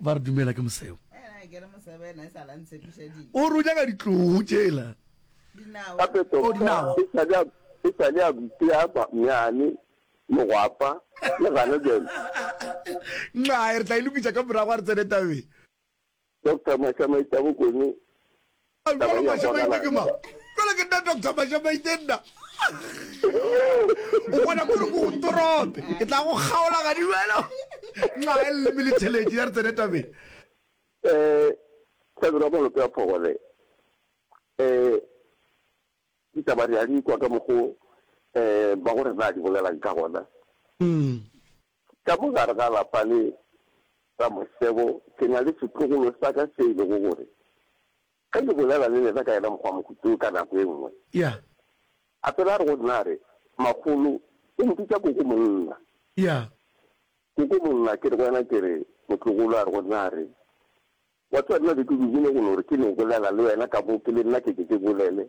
Ba re dumela ke mosebo. O re o nyaka ditlou tšela. Gape tota e sa le a butea banyane mogwapa le gana bjale. Nxae re tla e lokisa ka morago a re tsene tabeng. Doctor Mašamaitsa Bokone Taba ea bonalang bjale. Jwale ke nna Doctor Mashamaite nna. O bona kore ko ntorope. Ke tla go kgaola ga di jwalo. Nxa e le mele tšhelete ya re tsene tabeng. Eh Thabelo wa Malope a Phogole eh ditaba re a di kwa ka mokgo eh ba go rena a di bolelang ka gona. Ka mo gare ga lapa le Ramosebo ke na le setlogolo sa ka se e lego gore ge ke bolela le lena ka yena mokgwa mohuta wo ka nako e nngwe Yeah. a fela a re go nna a re, Makgolo, o mpitša koko monna. Yeah. Koko monna, ke re go yena ke re, Motlogolo, a re go nna a re, Wa tseba nna be ke dumile go no re ke no bolela le wena ka mo ke le nna ke ke ke bolele.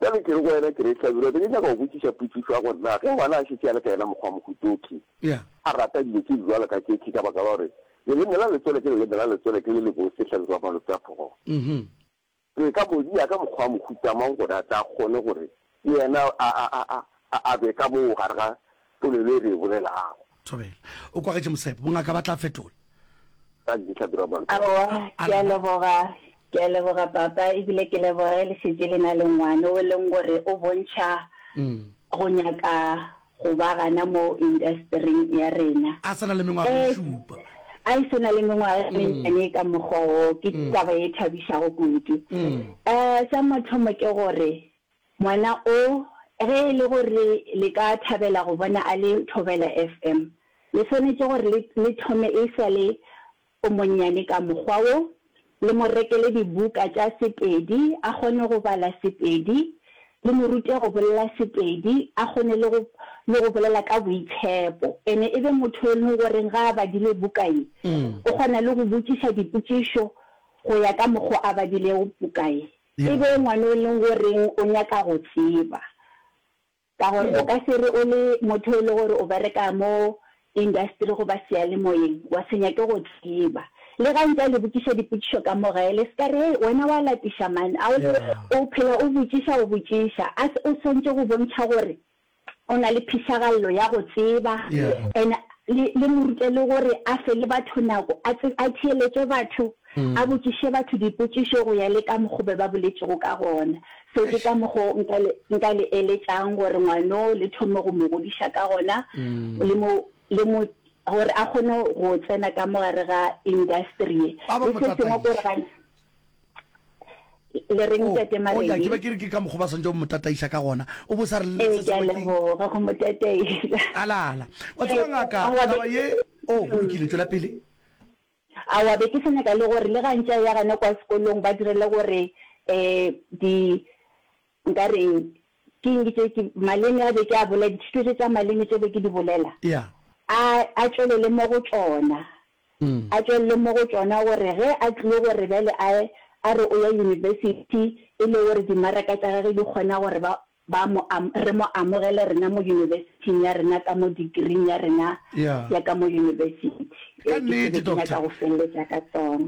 Bjale ke re go wena, ke re, Hlabirwa, be ke nyaka go botšiša potšišo ya gore na ge ngwana a šetše a le ka yena mokgwa wa Mohutoki, a rata dilo tše di bjalo ka tše, ke ka baka la gore leleme la letswele ke leleme la letswele, ke le lebotse, Hlabirwa Malopšaphogo. Re ka mo dia ka mokgwa wa mohuta mang gore a tle a kgone gore le yena a be ka moo gare ga Polelo e re e bolelago. Thobela. O kwagetše Mosepo. Bongaka ba tla fetola. Tag di tla dira mantwa. Aowa, ke a leboga. Ke a leboga, Papa, e bile ke leboga ge le šetše le na le ngwana o e leng gore o bontšha go nyaka go ba gana mo indastering ya rena. A se na le mengwaga e šupa. A e se na le mengwaga e mennyane ka mokgwa woo. Ke taba e thabišago kudu. Sa mathomo ke gore, Ngwana o, ge e le gore le ka thabela go bona a le Thobela FM, le swanetše gore le, le thome e sa le o monnyane ka mokgwa wo, le mo rekele dibuka tša Sepedi a kgone go bala Sepedi, le mo rute go bolela Sepedi a kgone le go, le go bolela ka boitshepo. Ene e be motho yo e lego gore ge a badile buka ye, o kgona le go botšiša dipotšišo go ya ka mokgwa a badilego buka ye. E be ngwano e leng goreng o nyaka go tseba, ka gore o ka se re o le motho e le gore o bereka mo industry goba seyalemoyeng wa se nyake go tseba. Le ga ntse a le botšiša dipotšišo ka mo gae, le se ka re, Hei, wena wa lapiša man, a o phela o botšiša o botšiša. A o swantše go bontšha gore O na le phišagallo ya go tseba, and le, le mo rute le gore a fe le batho nako, a tse, a theeletše batho, a botšiše batho dipotšišo go ya le ka mokgo be ba boletšego ka gona. So ke ka mokgo nka le, nka le eletšang gore ngwano le thome go mo godiša ka gona, le mo, le mo, gore a kgone go tsena ka mo gare ga industry ye. Le se sengwe ke gore ga. le reng tete maledi oh, ke be ke re ke ka mokgwa ba swantse go mo tataiša ka gona o bo sa re ee, ke a leboga go mo tataiša alala wa tseba ngaka taba ye o oh, bolokile tswela pele awa be ke sanyaka le gore le gantša ya gane kwa sekolong ba direle gore um di Nka re ke eng? Ke tše ke maleme a be ke a bolela, dithuto tše tša maleme tše be ke di bolela, a, a tšwelele mo go tšona, a tšwelele mo go tšona, gore ge a tlile gore bjale a, a re o ya yunibesithi, e le gore dimaraka tša gagwe di kgona gore ba, ba mo am, re mo amogele rena mo yunibesithing ya rena ka mo degree-ing ya rena ya ka mo yunibesithi. Ka nnete, Doctor.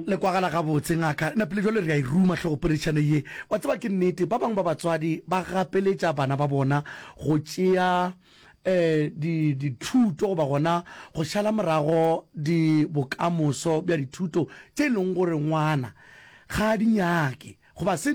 Le kwagala gabotse, Ngaka. Napile jwale re a e ruma hlogopoledišano ye. Wa tseba, ke nnete, ba bangwe ba batswadi ba gapeletša bana ba bona go tšea um di, dithuto goba gona go šala morago di, bokamoso bja dithuto tše e lego gore ngwana ga a di nyake goba se.